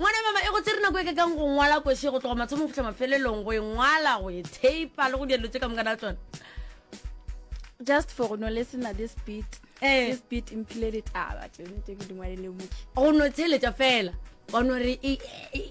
ngwana mama e go tsere nako e ka kang go ngwala kwese go tloga mathomo go fitlha mafelelong go e ngwala go e thape le go dielo tse ka mokana tsone just for go no listen at this beat eh. this beat mphile ditaba tse ke di ngwalele moki go no tsheletša fela wa no re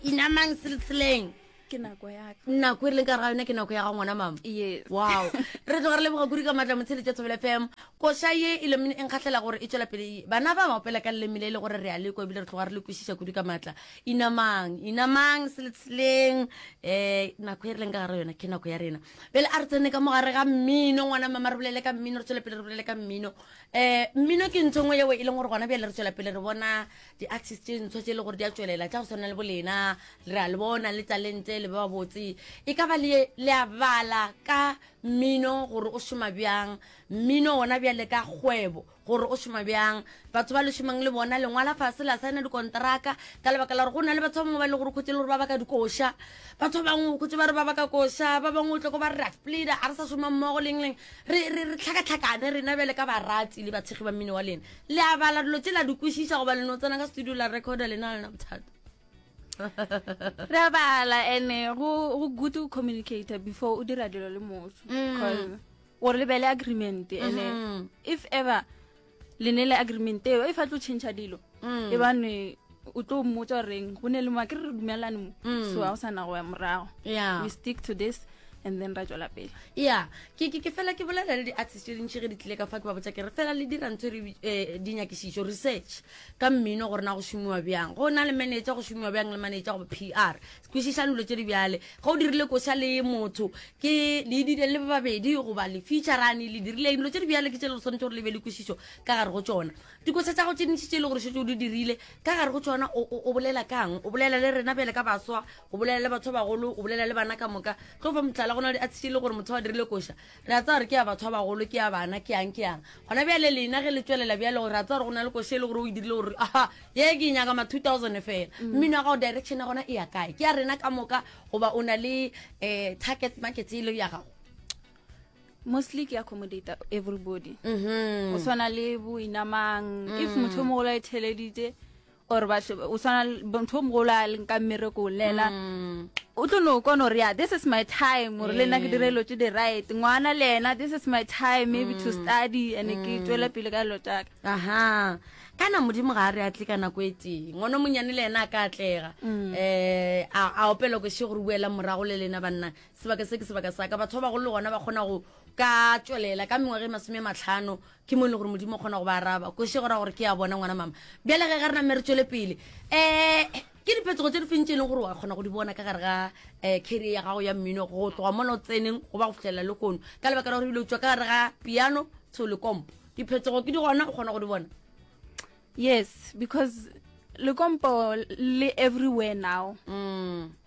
inamang siltseleng ke nako ya ka nako e re leng ka ga yone ke nako ya ga ngwana mama yes wow re tloga re leboga kuri ka maatla motshele tša thobela fm koša ye e lemene e nkgatlhela gore e tswela pele bana ba mapela ka lelemile e le gore re a le ko ebile re tloga re le kwešiša kuri ka maatla inamang inamang seletsheleng um nako e re leng ka gara yona ke nako ya rena pele a re tsene ka mogare ga mmino ngwana mama re bolele ka mmino re tswele pele re bolele ka mmino um mmino ke ntho e nngwe yeo e leng gore gona bjale re tswela pele re bona di-artist tše ntsho tše e le gore di a tšwelela tša go tshwana le bolena re a le bona le talente le ba babotse e ka ba le a bala ka mmino gore o šoma bjang mmino ona bjale ka kgwebo gore o šoma bjang batho ba le šomang le bona lengwala fase la saena dikontraka ka lebaka la gore go na le batho ba bangwe ba e le gore khotse e le gore ba baka dikoša batho ba bangwe khotse ba re ba baka koša ba bangwe o tloko ba re ra splida a re sa šoma mmogo leng leng re tlhakatlhakane rena bjale ka barati le batshegi ba mmino wa lena le a bala dilo tse la di kwešiša goba le no tsena ka studio la recorda le na lena bothata re a bala ene go go good to communicate before o dira dilo le motho Mm. 'Cause o re lebele agreement Mhm. ene if ever le ne le agreement eo e fa tlo change dilo Mm. e bane o tlo mmotsa goreng go ne le moa ke re re dumelane mo mm. so ga go sana go ya morago we stick to this and then ra tswela pele ya ke ke fela ke bolela le di-artist tse dintšhi ge di tlile ka fa ke ba botsa ke re fela le dira ntho um eh, dinyakišišo research ka mmino gore na go šomiwa bjang go na le manager go šomiwa bjang le manager go p r kwešišang dilo tse di bjale ge o dirile koša le motho ke le dire le babedi goba le featurane le dirileng dilo tse di bjale ke tse le swanetse gore le be le kwešišo ka gare go tsona Dikoša tša gago tše ntši tše e le gore šetše o di dirile, ka gare go tšona o bolela kang? O bolela le rena bjale ka baswa, o bolela le batho ba bagolo, o bolela le bana ka moka. Tlo fa mohlala, go na le a tshitše e le gore motho wa dirile koša, re a tsaya gore ke ya batho ba bagolo, ke ya bana, ke yang, ke yang. Gona bjale lena ge le tšwelela bjale gore re a tsaya gore go na le koša e le gore o e dirile gore aha, ye ke e nyaka ma 2000 fela. Mm. Mmino wa gago direction ya gona e ya kae? Ke ya rena ka moka goba o na le um target market e le ya gago? mostly ke accommodate everybody mm -hmm. o tshwana le boinamang mm -hmm. if motho o mogolo a e theleditse or batho o tshwana motho o mogolo a leng ka mmereko lela mm. o tlo no kona gore ya this is my time gore le nna ke dire dilo tse di right ngwana le ena this is my time maybe to mm. study and ke mm. tswela pele ka dilo tsaka aha kana modimo ga a re a tle ka nako e teng ngwana o monyane le ena a ka atlega um a opela ko se gore buela morago le lena banna Sebaka se ke sebaka sa ka. Batho ba bagolo le gona ba kgona go ka tšwelela ka mengwaga e masome matlhano ke mo e le gore modimo o kgona go ba araba kwešo e go ra gore ke ya bona ngwana mama bjale ge ge re name re tšwele pele um ke diphetogo tse di fentse e leng gore wa kgona go di bona ka gare ga um eh, carrier ya gago ya mmino go tloga mola o tseneng go ba go fitlhelela le kono ka lebaka la gore ebile o tswa ka gare ga piano tsho le kompo diphetogo ke di gona o kgona go di bona yes because le kompo le everywhere now mm.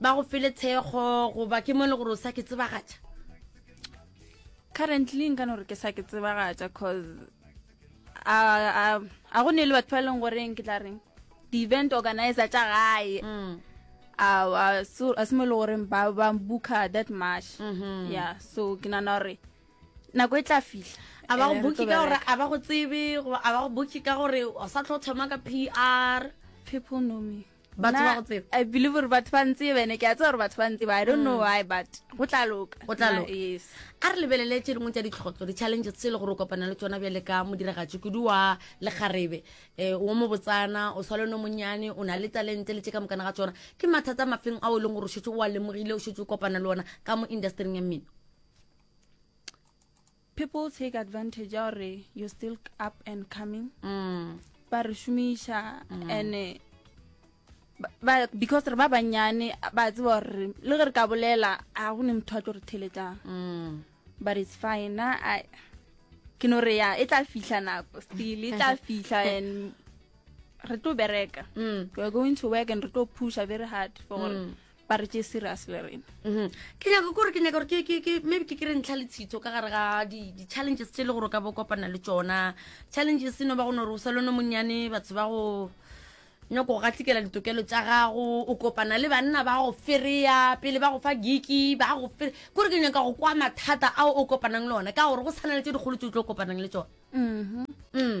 ba go fele tshego goba ke mo e le gore o sa ke tsebagatša currently nka no re ke sa ke tsebagatša cause a go ne le batho ba e leng goreng ke tla reng di-event organizer tša gae mm. a se mo e le goreng ba ba booka that much mm-hmm. yeah so ke nana gore nako e tla fihla a ba go eh, booki ka gore a ba go tsebe a ba go booki ka gore o sa tlho thoma ka p r people know me batho ba go tseba i believe gore batho ba ntse bene ke a tseba gore batho ba ntse ba i don't know mm. why but go tla loka go tla loka yes a re lebelele tse dingwe tsa ditlhotlho di-challenges tse e le gore o kopana le tsona bjale ka modiragatši kudu wa lekgarebe um o mo botsana o sale no monnyane o na le talente le tse ka mokana ga tsona ke mathata mafeng ao e leng gore o šetse oa lemogile o šetse o kopana le ona ka mo industryng ya mmino people take advantage ya gore you're still up and coming mm. ba re šomiša mm. ande ba because re ba banyane ba tseba gore le ge re ka bolela a go ne motho a tlo re theletang mm. but it's fine na i ke no re ya e tla fihla nako still e tla fihla and re tlo bereka mm. we're going to work and re tlo pusha very hard for gore mm. ba re tše serious le rena mhm. ke nyaka kore ke nyaka gore maybe ke kry ntlha le tshitho ka gare ga di-challenges tse e le gore o ka bo kopana le tsona challenges e no ba gone gore o sa lone monnyane batho ba go nyako go gatlikela ditokelo tsa gago o kopana le banna ba go fereya pele ba go fa giki ba go fere kore ke nyaka go kwa mathata ao o kopanang le one ka gore go tshwana le tse dikgolo tse o tlo kopanang le tsone mhm. mm.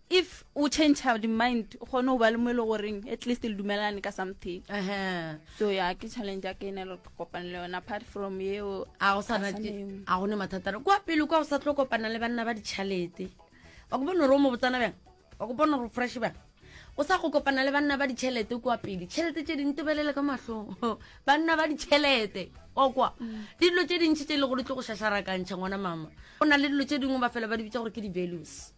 if o change di mind o kgone go ba le mo e le goreng at least le dumelane ka something uh -huh. so ya ke challenge ya ke ene le kopane le yona apart from eo a go sana a go ne mathata kwa pele kwa go sa tlo kopana le banna ba ditšhalete wa go bona gore o mo botsana bjang wa go bona gore fresh bjang o sa go kopana le banna ba ditšhelete kwa pele tšhelete tše ding tebelele ka matlhong banna ba ditšhelete okwa mm. dilo tše dintšhi tše e le gore tlo go šašarakantšha ngwana mama go na le dilo tše dingwe ba fela ba di bitsa gore ke di-values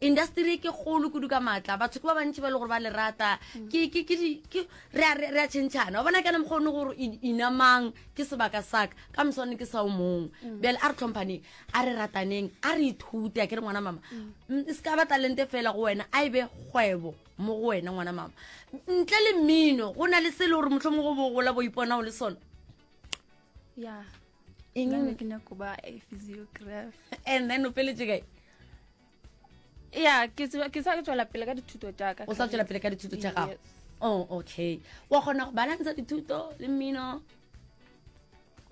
industry ke kgolo kudu ka maatla batho ke ba bantši ba e le gore ba le rata re a tšhentšhana wa bona kana mokgwa one gore inamang ke sebaka saka ka moswane ke sa o mongwe mm. bjale a re tlhomphaneng a re rataneng a re ithute a ke re ngwana mama mm. se ka ba talente fela go wena a e be kgwebo mo go wena ngwana mama ntle le mmino go na le se e le gore motlho mo go bogola bo ipona o le sone ya eng nna ke nyako ba a physiograph and then o peletse kae ya ke sa ke tswela pele ka dithuto tša ka o sa tswela pele ka dithuto tša gago oh okay wa kgona go balantsha dithuto le mmino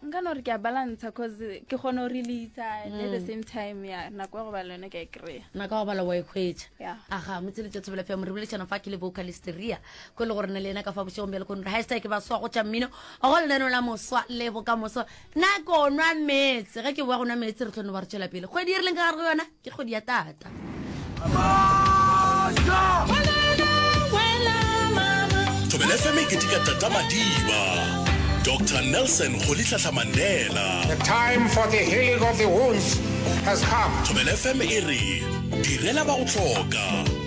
nka no re ke a balantsha cause ke kgone go releasa at the mm. same time ya nako ya go bala yone ke a e kry-a nako ya go bala wa e hwetša aga motsheletša thobela fea morebolešana fa ke le vocalisteria ko le gore na le ena ka fa bošegong bjale kone re ga e sa ke ba swa go tša mmino go lenaneo la moswa le bokamoso na ko nwa metse ge ke boa go nwa metse re tlhono ba re tšwela pele kgwedi e re leng ka gare go yona ke kgwedi ya tata thobela fm e ketika tata madiba dr nelson golitlhatlha mandela the time for the healing of the wounds has come thobela fm e re direla ba go tlhoka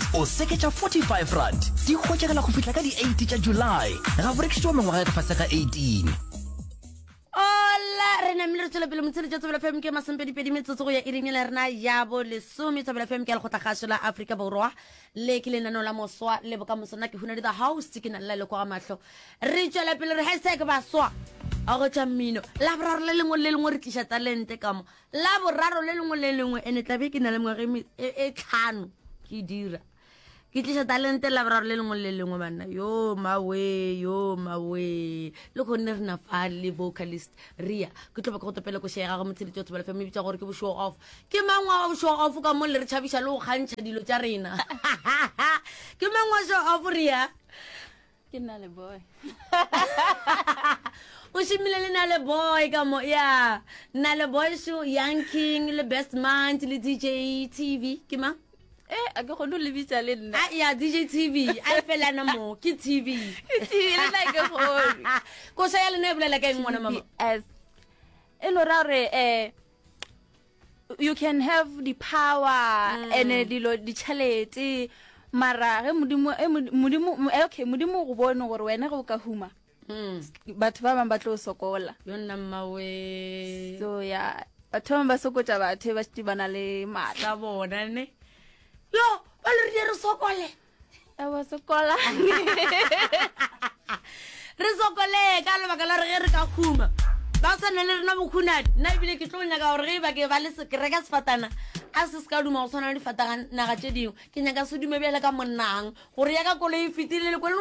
O seke tša 45 rand di hwetšagala go fihla ka di 8 tša July. Ga go rekišitšwa mengwaga e ka fase ga 18. Ola re namile re tswela pele motshele tša tsebela fm ke masempedipedi metsotso go ya iring le rena ya bo lesome tsebela fm ke a lekgotla gašo la aforika borwa le ke lenaneo la moswa le bokamoso nna ke huna di the host ke na lela lekwa ga mahlo re tswela pele re hasek baswa a go tša mmino la boraro le lengwe le lengwe re tliša talente ka mo la boraro le lengwe le lengwe ene tlabe ke na le mengwaga e, e, e tlhano ke dira ke tlisa talente la boraro le lengwe le lengwe banna yo mawe yo mawe le kgonne re na fa le vocalist ria ke tloba ke go topele ko shega go motsheditse o tshobela family bitsa gore ke bo show off ke mangwa wa show off ka mo le re tšhabiša le go kgantšha dilo tša rena ke mangwa show off ria ke nna le boy o šimile le na le boy ka mo ya nna le boy show young king le best mant le dj tv ke mang eh a ke gone o lebitsa le nna ah, ya dj tv a e felana mo ke tv tv le nna ke gone koša ya lena e bolela ka eng ngwana mama e lo ra gore um eh, you can have the power mm. ene dilo ditšhelete mara ge modimo eh, modimo eh, okay modimo go bone gore wena ge o ka huma mm. batho ba bangwe ba tlo sokola yonna mmawe so ya batho ba bangwe ba sokotsa batho e ba šete ba na le maatla bona ne yo ba le re di re sokole ewa sekola re sokolee ka lebaka la re ge re ka khuma ba sa ne le rena bokhunadi nna ebile ke tlo nyaka gore ge e bake ba le sekereka sefatana a se se ka duma go tshwana le difataganaga tse dingwe ke nyaka se dume bjale ka monnang gore ya ka kolo e fetile le kole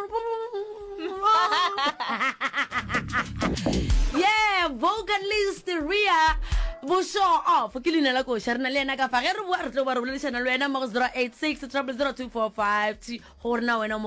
yeah vocalist ria bo show off ke leina la koša re na le yena ka fa ge re boa re tlo ba re boledišana le wena mo go 086 00245 gore na wena o mo